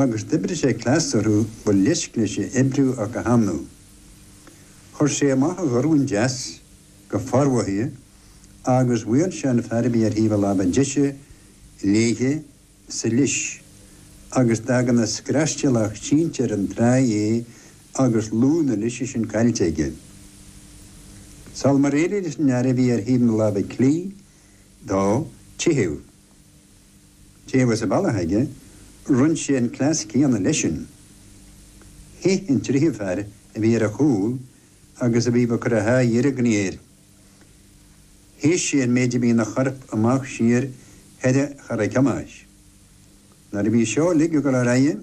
Agus d'oibrigh sé cleas orthu ba leisc leis a oibriú ach go hannamh. Chuir sé amach a dhorn deas go formhothaithe agus bhuail sé an fear a bhí ar thaobh a láimhe deise léithe sa leis agus d'fhág ina scraistéalach sínte ar an trá é agus lúth na leise sin caillte aige. Sul mar éirigh leis an fhear a bhí ar thaobh na láimhe clí dó teitheadh, Cé go raibh fios a bhealaigh aige, rinn sé an cleas céanna leisean. Theith an tríú fear a bhí ar a chúl agus a bhí ag cur a haghaidh ar an gcliar. Shéid sé an méid a bhí ina chorp amach siar thar a chara ciumhais. Nuair a bhí seo uilig ag dul ar aghaidh,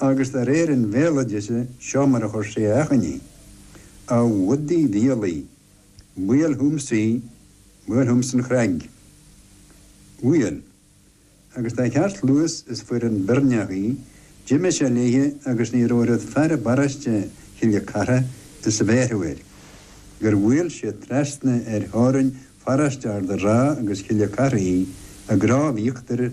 agus de réir an bhéaloidis seo mar a chuir sé a achainí, A Bhudaí Mhíolaí, buail chugamsa í, buail chugamsa an chnag. Bhuail. Agus de cheartluas is fuair an Beirneach í, d'imigh sé léithe agus ní raibh oiread fear i bparáiste Chille Cartha is a bhéarfadh air, gur bhuail sé trasna ar theorainn pharáiste Ard a' Rátha agus Chille Cartha í, i gCróibh Íochtair,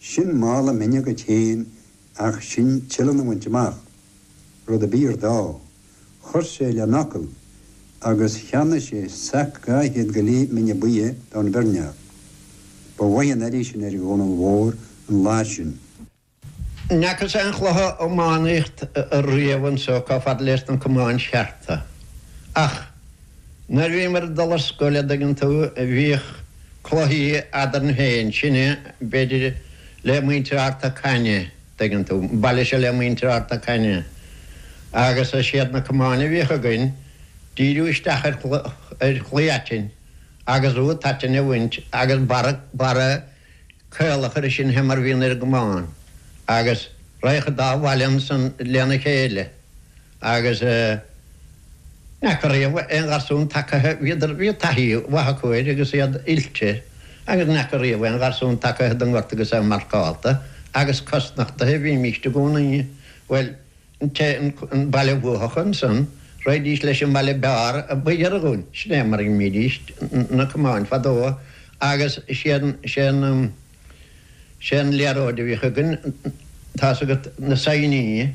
Sin mála mine agat fhéin ach sin tuilleadh a bhaint amach. Rud a b'fhíor dó. Chuir sé lena fhocal agus cheannaigh sé sac dhá chéad go leith mine buidhe do'n Bheirneach. Ba mhaith an airí sin ar Dhomhnall Mhór an lá sin. N'fheacas aon chluiche iománaíocht' riamh anso chomh fada leis na camáin chearta. Ach. Nuair a bhíomar ag dul ar scoil, a dtuigeann tú, bhíodh cluichí eadrainn féin, sinne, b'fhéidir le muintir Ard na Caithne, dtuigeann tú, an baile seo le muintir Ard na Caithne, agus is iad na camáin a bhíodh againn, díriú isteach ar, ar chlaí aitinn agus buta aitinn a bhaint agus barra, barra caol a chur air sin fé mar a bhíonn ar an gcamán agus raghadh an dá bhaile ansan lena chéile. Agus n'fheaca riamh aon gharsún tagaithe, bhíodar, bhí taithí mhaith acu air agus iad oilte, agus n'fheaca riamh aon gharsún tagaithe don ngort agus é marcálta agus cosnochtaithe, bhímíst i gcónaí, bhuel, an té, an baile bhuafadh ansan, raghaidís leis an mbaile b'fhearr a ba ghiorra dhúinn, sin é mar a bhídíst na camáin fadó agus sé an, sé an, sé an liathróid a bhíodh againn, tá's agat, na saighneáin.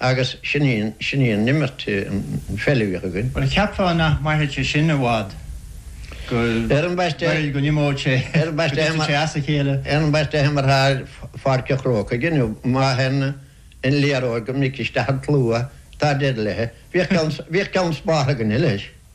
Agus sin í an imirt, an pheil a bhíodh againn. Bhuel, cheapfá nach mairfeadh sé sin i bhfad, go, bhuel, go n-imeodh sé, go dtitfeadh sé as a chéile. Á, ambaiste, bhíomair thar Pháirc an Chrócaigh inniu, má théann an liathróid go minic isteach sa tslua, tá deireadh léi. Bhíodh ceann spártha againne leis.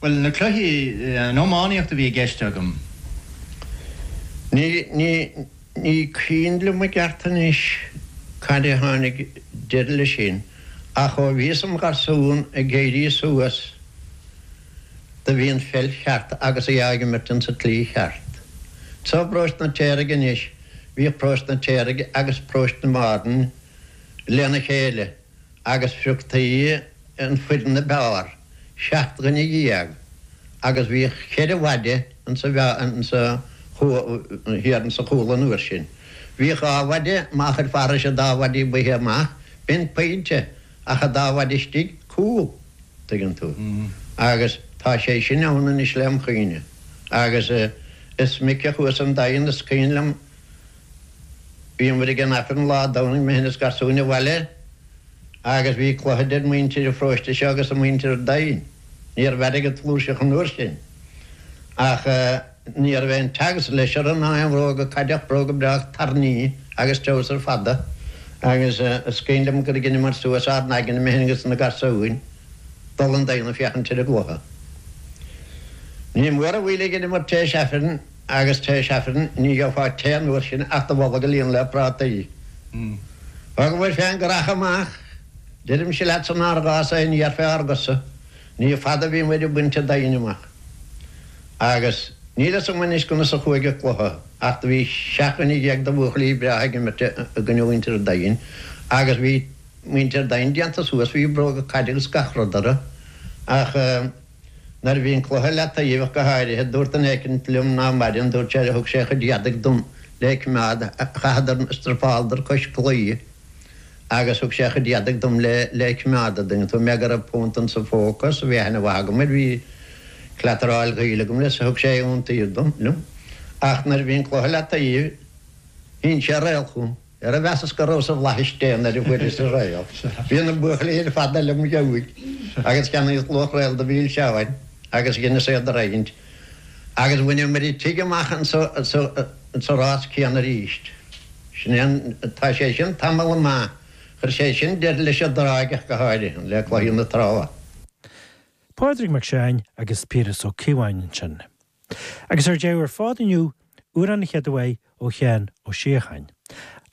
Bhuel, na cluiche, an iománaíocht a bhí i gceist agam. Ní cuimhin liom i gceart anois cathain a tháinig deireadh leis sin, ach ó bhíos im gharsún ag éirí suas do bhí an pheil cheart agus í á imirt insa tslí cheart. Sa bparóiste an Fhirtéaraigh anois, bhíodh paróiste an Fhirtéaraigh agus paróiste Márthain lena chéile. agus phrioctaí an fhoireann ab fhearr, seacht nduine déag, agus bhíodh cheithre mhaide insa bháire, insa, thiar insa chúl an uair sin. Bhíodh dhá mhaide, má chuaigh thairis an dá mhaide ab fhaide amach, b'in pointe, ach an dá mhaide istigh, cúl, an dtuigeann tú. Agus tá sé sin ann anois lem chuimhne. Agus is minic a chuas 'on Daingean, is cuimhin liom, Bhíomar ag an Aifreann lá Domhnaigh, mé féin is garsúin an bhaile, agus bhí cluiche idir muintir an pharóiste seo agus muintir an Daingin. Ní raibh airgead flúirseach an uair sin, ach ní raibh aon togs orthu ná aon bhróga caide ach, bróga breá tairní agus treabhsar fada, agus is cuimhin liom gur dheineamar suas ár n-aigne, mé féin agus na garsúin, dul 'on Daingean ag féachaint ar an gcluiche. Ní mór an mhoill a dheineamar tar éis Aifrinn. Agus tar éis Aifrinn ní gheobhfá tae an uair sin ach do bholg a líonadh le prátaí. Thugamair fén ngreafadh amach, deirimse leat sa rás agus ní fheicfeá ár gcosa. Ní fada a bhíomair ag baint an Daingin amach. Agus níl a fhios agam anois conas a chuaigh an cluiche, ach do bhí seacht nduine déag de bhuachaillí breátha ag imirt i gcoinne mhuintir an Daingin agus bhí muintir an Daingin déanta suas, bhí bróga caide agus gach rud orthu. Ach. Nuair a bhí an cluiche i leataoibh ach go háirithe, dúirt duine éicint liom ná maireann, dúirt sé, thug sé a chuid éadaigh dom le coimeád, chaitheadar, stripeáladar cois claí agus thug sé a chuid éadaigh dom le, le coimeád an dtuigeann tú, mar go raibh punt insa phóca, is bhí aithne mhaith agam air, bhí cleataráil gaoil agam leis, thug sé iontaoibh dom, liom. Ach nuair a bhí an cluiche i leataoibh, shín sé réal chugam. Ara mheasas go rabhas i bhflaithis Dé nuair a fuaireas an réal, bhí na buachaillí ag fanacht liom, ag gabháil agus cheannaíos luach réal de mhilseáin agus dheineas é a roinnt agus bhaineamair an tigh amach sa rás céanna arís. Sin é an. Tá sé sin tamall maith. Chuir sé sin deireadh leis an dtráigh, ach go háirithe, le cluichí na Trá. Pádraig Mac Seáin agus Piaras Ó Cíobháin ansin. Agus ar deireadh ar fad inniu, amhrán, an chéad uaidh ó Sheán Ó Síocháin.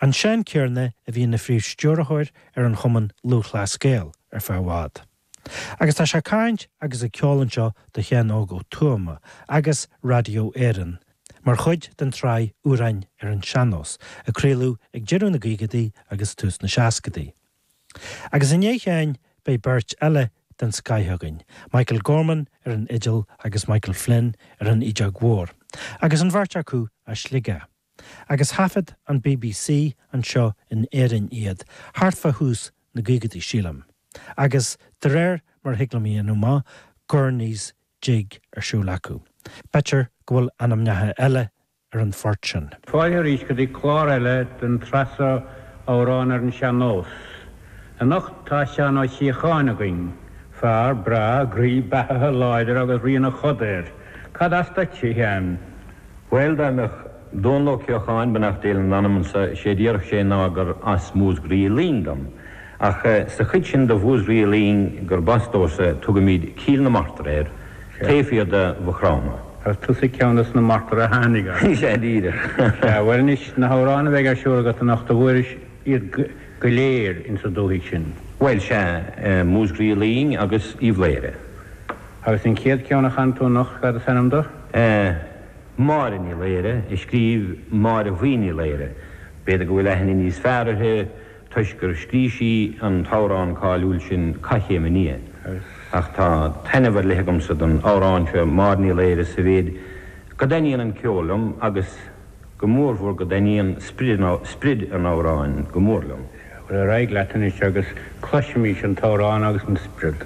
An Seán céanna a bhí ina phríomhstiúrthóir ar an Chumann Lúthchleas Gael ar feadh i bhfad. Agus tá sé ag caint agus ag ceol anseo do Sheán Óg Ó Tuama agus Radio Éireann mar chuid den tsraith Amhráin ar an Sean-Nós a craoladh ag deireadh na gcaogaidí agus tús na seascaidí. Agus inniu féin beidh beirt eile den scoith againn, Michael Gorman ar an fhidil agus Michael Flynn ar an fhideog mhór, agus an bheirt acu as Sligeach. Agus thaifead an bbc anseo in Éirinn iad thart fá thús na gcaogaidí, sílim. Agus de réir mar a thig liom a dhéanamh amach, Gurney's Jig ar siúl acu. B'fhéidir go bhfuil ainmneacha eile ar an phort sin. Fáilte arís go dtí clár eile den tsraith seo Amhráin ar an Sean Nós. Anocht tá Seán Ó Síocháin againn. Fear breá, groí, beathaithe, láidir agus rian a choda air. Cad as duit, a Sheáin? Bhuel, dá mbeadh Dónall Ó Ceocháin, beannacht Dé lena anam, anso, sé a déarfadh sé ná gur as Múscraí Uí Fhloinn dom. Ach sa chuid sin de Mhúscraí Uí Fhloinn gurb as domhsa tugaimid Cill na Martra air, taobh thiar de Mhaigh Chromtha. Ar tusa ceann de na martair a tháinig as? Is ea, díreach. Sea, bhuel anois, na hamhráin a bheidh ar siúl agat anocht, an bhfuairis iad go léir ins an dúthaigh sin? Bhuel, sea, Múscraí Uí Fhloinn agus Uíbh Laoghaire. Agus an chéad cheann a chanfaidh tú anocht, cad is ainm dó? Máire Ní Laoghaire, a scríobh Máire Bhuí Ní Laoghaire. B'fhéidir go bhfuil aithne níos fearr uirthi. toisc gur scrígh sí an t-amhrán cáiliúil sin Cath Chéim an Fhia. Ach tá taitneamh ar leith agamsa don amhrán seo Máire Ní Laoghaire sa mhéid go dtaitníonn an ceol liom agus go mórmhór go dtaitníonn sprid an amhráin go mór liom. Ar aghaidh leat anois agus cloisimís an t-amhrán agus an sprid.